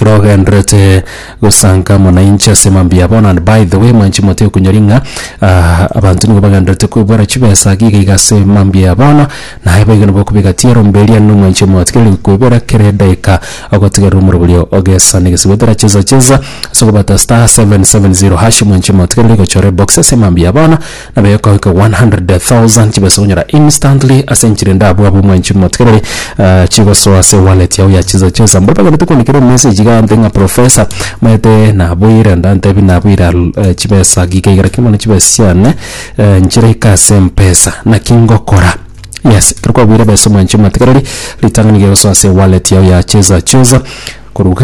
ekero ogenderete gosanka mwanainchi ase mambia bono and by the way mwanchi mote okunyori ng'a ah, abanto nigo bagenderete kwebwera chibesa iga iga ase mambia bono naye boigo nabo okobeka tiaro mbe eria no mwanchi omwoti kere kwebera kera edaika ogotigerera omoroberio ogesa ne gesigo etera cheza cheza ase okobata star 770 hash mwanchi omwoti kere gochora ebox ase mambia bono na bekoika 100,000 chibase gonyora instantly ase enchiri ende abwo abwo mwenchi motigereri eh, chigosoa ase wallet yao ya chisa chesa mbore bagende tukonikire message iga nte ng'a professor maete naboire nda ntebi naboira eh, chibesa giga iga lakini mono chibesa chiane eh, nchire ika ase mpesa naki ngokora yes kero kwabuire besa mwenchi motigereri ritang'ani gegosoa ase wallet yao ya chesa chesa koruga